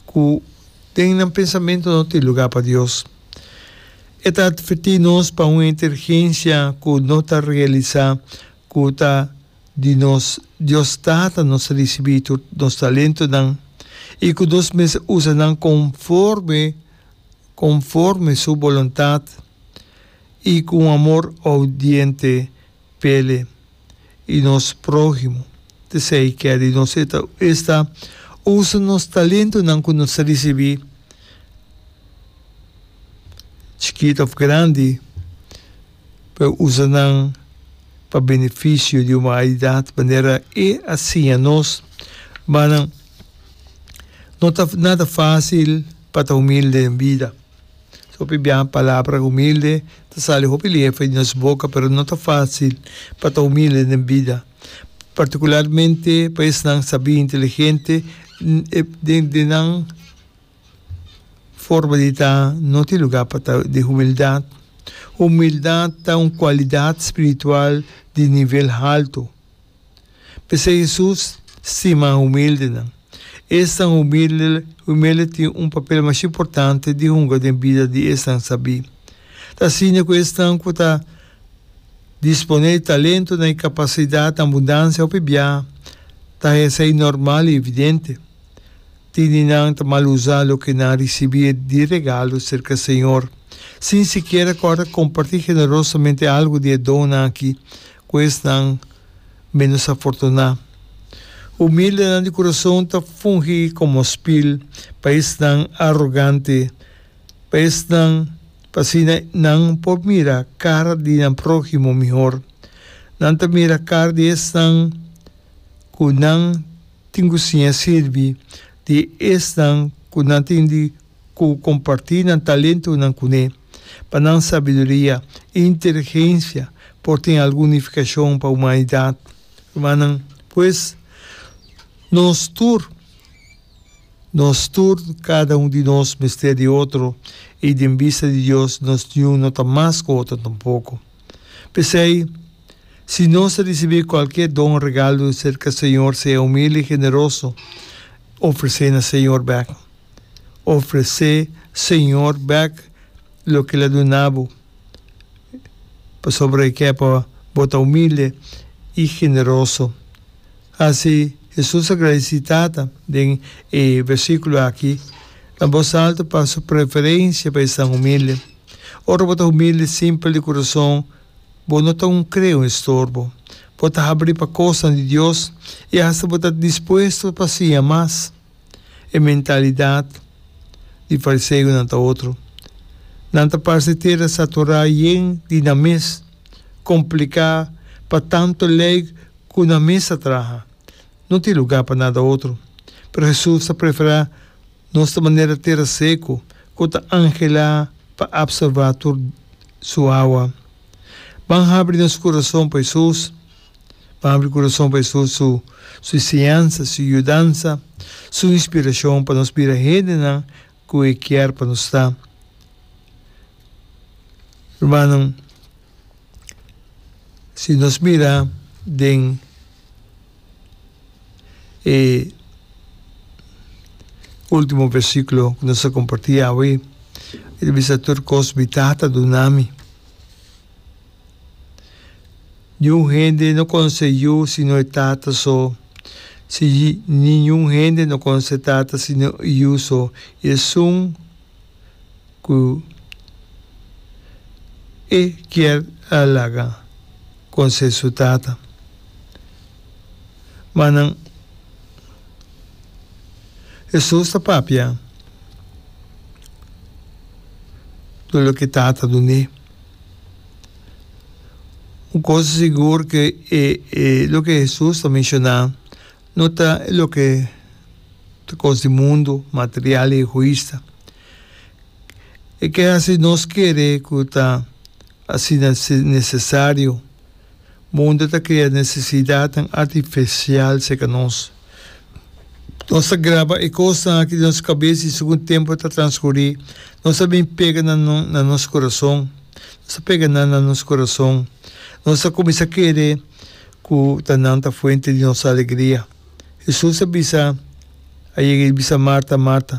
Ku den nan pensamento no tin lugá pa Dios. E ta advertí nos pa un intergensia ku no ta realisá ku ta di nos Dios Tata nos risibí tur nos talentunan i ku nos mester usa nan konforme konforme Su boluntat i ku un amor oudiente. pele y nos prohimo t'esey keda y nos eta esta usa nos talentonan cu nos a ricibi chikit of grandi pa e usa nan pa beneficio di humanidad manera e a siña nos manan no ta nada facil pa ta humilde en bida. Hopi biaha palabra humilde ta sali hopi liefa di nos boka, pero no ta fácil pa ta humilde den bida, partikularmente pa esnan sabí, inteligente, di nan forma di ta no tin lugá pa ta di humildat. Humildat ta un kualidat spiritual di nivel haltu. P'esei Hesus stima humildenan. Esnan humilde tin un papel masha importante di hunga den bida di esnan sabí. Ta asina ku esnan ku ta disponé e talentonan i kapasidat na abundansia hopi biaha ta hesha i normal i evidente. Tini nan ta mal usá loke nan risibí di regalo serka Señor, sin sikiera kòrda kompartí generosamente algu di e donnan akí ku esnan ménos afortuná. Humildenan di kurason ta fungi komo spil pa esnan arogante, pa esnan pa asina nan por mira kara di nan próhimo mihor. Nan ta mira kara di esnan ku nan tin ku siña sirbi, di esnan ku nan tin di ku kompartí nan talentonan kuné. Pa nan sabiduria i inteligensia por tin algun nifikashon pa humanidat. Rumannan, pues, nos tur, nos tur, kada un di nos mester di otro, i den bista di Dios nos niun no ta mas ku otro tampoko. P'esei, si nos a risibí kualke don o regalu serka Señor, sea humilde i generoso, ofres'é na Señor bek. ofresé Señor bek loke el a duna bo, pasobra e ke pa bo ta humilde i generoso. Hasi Hesus a gradisí Tata den e versíkulo aki. Na bos altu pa su preferensia pa esnan humilde. Ora bo ta humilde simpel di kurason, bo no ta un krea, un estorbo. Bo ta habrí pa kosnan di Dios i hasta bo ta dispuesto pa siña mas. E mentalidat di fariseonan ta otro. Nan ta parce tera saturá yen di nan mes, kompliká pa tantu lei ku nan mes ta traha. No tin lugá pa nada otro. Pero Hesus ta preferá nos ta manera tera seku ku ta anhelá pa apsorbá tur su awa. Ban habri nos kurason pa Hesus. Bo abri kurason pa Hesus, Su enseñansa, Su yudansa, Su inspirashon pa nos bira hendenan ku E kier pa nos ta. Rumannan, si nos mira den e ultimo versikulo ku nos a komparti awe, e ta bisa, Tur kos mi Tata duna mi. Niun hende no conse Yu sino e Tata so. Si Yu ni niun hende no conse e Tata sino Yu so, i esun cu e kier a laga conse su Tata. Ma nan, Hesus ta papia tur loke e Tata dun'é. Un cosa sigur ke e e loke Hesus ta menshoná no ta e loke ta kos di mundu, material i egoista. E ke hasi nos kere ku ta asina si nesesario. Mundo ta krea necesidadnan artificial cerca nos. Nos ta graba e cosnan aki den nos cabes y segun tempo ta transcuri nos ta bin pega nan na nos corazon, nos ta pega nan na nos corazon. Nos ta cuminsa kere cu ta nan ta fuente di nos alegria. Jesús a bisa, a yega y bisa Marta, Marta.